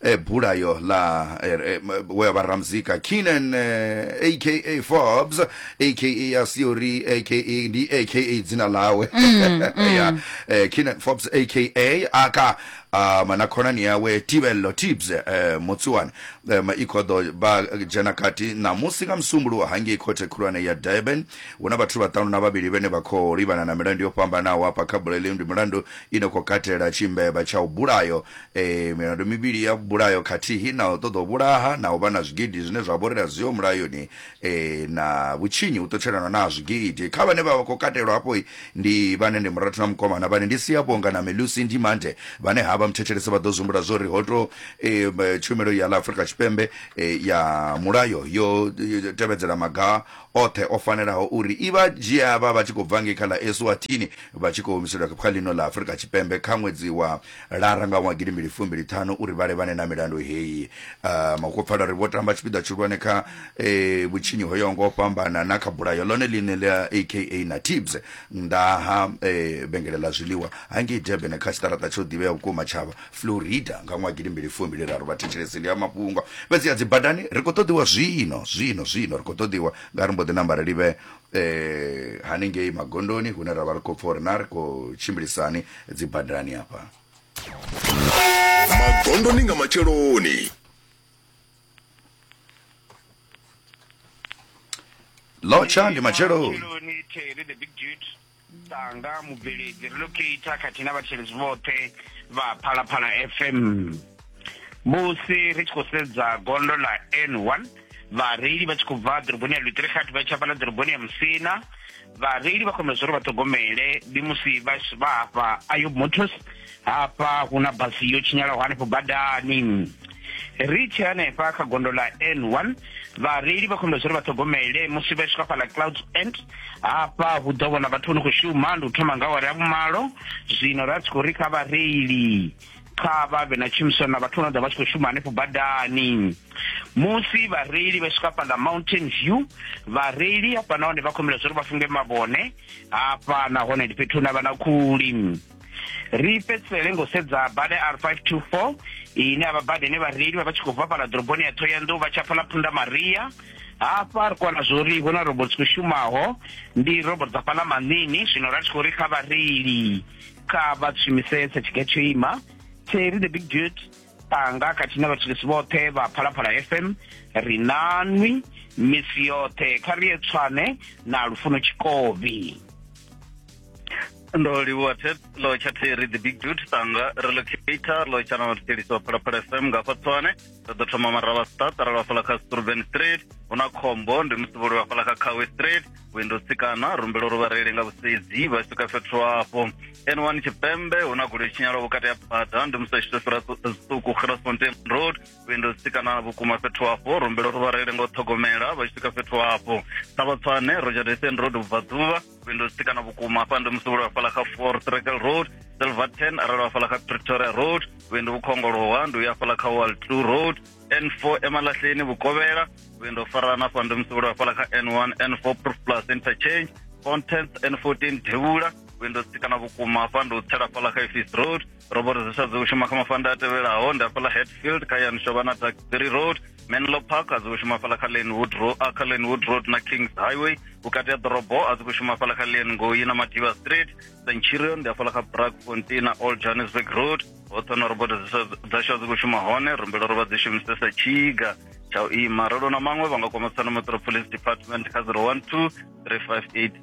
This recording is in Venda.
e bulayo ḽa e, e, we vha ramzika kinan aka forbes aka ya siori aka ndi aka dzina ḽawe ya eh, kinan forbes aka aka ah, mana khonani yawe tibello tibs eh, mutsuwani eh, ma i khou ḓo vha dzhena kati ṋamusi nga musumbuluwo hangei khothe khulwane ya durban hu na vhathu vhaṱanu na vhavhili vhene vha khou livhana na milandu yo fhambanaho hafha kha buleleu ndi milandu ine khou katela tshimbevha tsha u bulayo Ee, milandu mivhili ya vhulayo khathihi na u ṱoḓa u vhulaha na u vha na zwigidi zwine zwa vhori a zwiho mulayoni ee, na vhutshinyi hu ṱutshelana na ha zwigidi. Kha vhane vha vha khou katelwa hafho ndi vhane ndi Murathu na Mukomana vhane ndi Siyabonga na Melusi Ndimande vhane ha vha muthethelesi vha ḓo zwi humbula zwo ri ho tou ee, tshumelo ya ḽa Afrika Tshipembe ee, ya mulayo yo tevhedzela maga oṱhe o fanelaho uri i vha dzhia vha vha tshi khou bva ngei kha ḽa Eswatini vha tshi khou humiselwa kha ḽino ḽa Afrika Tshipembe kha ṅwedzi wa lara nga ṅwaha gidi mbili fumbili ṱhanu uri vhale vhane na milandu heyi uh, makopfala ri vho tamba tshipiḓa tshihulwane kha eh, vhutshinyi ho yaho nga u fhambana na kha bulayo ḽone ḽine ḽa aka na tibs nnḓa ha eh, vhengele ḽa zwiḽiwa hangei durban kha tshiṱaraṱa tsho ḓivhea vhukuma tshavha florida nga ṅwaha gidi mbili fumbili raru vhathetshelesi ndi a mafhungo fhedzi ya dzibadani ri khou ṱoḓiwa zwino zwino zwino ri khou ṱoḓiwa nga ri mbo ḓi namba ri livhe eh, hanengei magondoni hune ra vha ri khou pfa uri na ri khou tshimbilisani dzi badani hafha magondoni nga matsheloni lotsha ndi matsheloni Matsheloni, Terry, the big dude. Tanga mubveledzi relocator khathihi na vhathetshelesi vhoṱhe vha phalaphala fm musi ri tshi khou sedza gondo ḽa n one vhareili vha tshi khou bva ḓoroboni ya lutirikhathi vha tshi hafhaḽa ḓoroboni ya musina vhareili vha khomela zwa uri vha ṱhogomele ndi musi vha hafha ayo motors hafha hu na basi yo tshinyalaho hanefho badani ri tshi hanefha kha gondo ḽa n one vhareili vha khombela zwa uri vha ṱhogomele musi vha swika fhala cloud end hafha hu ḓo vhona vhathu vho no khou shuma ndi u thoma nga awara ya vhumalo zwino ra tshi khou ri kha vhareili kha vha vhe na tshumisano na vhathu vho no ḓa vha tshi khou shuma hanefho badani musi vhareili vha swika fhaḽa mountain view vhareili hafha nahone vha khombela zwa uri vha funge mavhone hafha nahone ndi fhethu hune vha na khuli ri fhedzisele ngo sedza bada r 524 ine avha bada ine vhareili vha vha tshi khou bva fhala ḓoroboni ya thohoyanḓou vha tsha pfa ḽa phunda maria hafha ri kwana zwo ri huna robot dzi khou shumaho ndi robot dza fhala manini zwino ra tshi khou ri kha vhareili kha vha shumisese tshige tsho ima theri the big dude panga khathihi na vhathetshelesi vhoṱhe vha phalaphala fm ri nanwi misi yoṱhe kha ri ye tswane na lufuno tshikobi ndo livhuwa lo tsha theri the big dude tanga relocator lo tsha na thetshelesi wa phalaphala fm nga fa tswane ri ḓo thoma maravha star tara lwa fhala kha struven street hu na khombo ndi musi vholi wa fhala kha kawe street windo tsikana rumbela uri vhareili nga vhusedzi vha swika fhethu hafho n1 tshipembe hu na goloi tshinyalaho vhukati ha bada ndi musi tshito fhira zwiṱuku grasfontein road vhuendo tsikana vhukuma fhethu hafho rumbelo ri vhareile ngo ṱhogomela vha tshi swika fhethu hafho sa vhatswane rogerdefen road vhubvaḓuvha vhuendo tsikana vhukuma hafha ndi musi vhulwa fhala kha for trekel road silverton arali wa fhala kha pretoria road vhuendo vhukhongolowa ndi uya fhala kha wall two road n4 emalahleni vhukovhela vhuendo farana hafha ndi musi vhulwa fhala kha n1 n4 proof plus interchange fontens n14 devhula vhuendo tsikana vhukuma hafha ndi u tsela fhala kha efis road roboro dzi sa dzi u shuma kha mafanda a tevhelaho ndi hafhaḽa hetfield kha yani shovha na taxbury road menlo park a dzi u shuma fhala kha lanewood road kha lanewood road na kings highway vhukati ha ḓorobo a dzi khou shuma fhala kha lian ngoi na madiva street centurion ndi hafhaḽa kha brakfontein na old johannesburg road hoṱhe na roboto dzashu a dzi khou shuma hone rumbelo ro vha dzi shumisesa tshiga tsha u ima ralo na maṅwe vha nga kwama tsano metro police department kha 012 358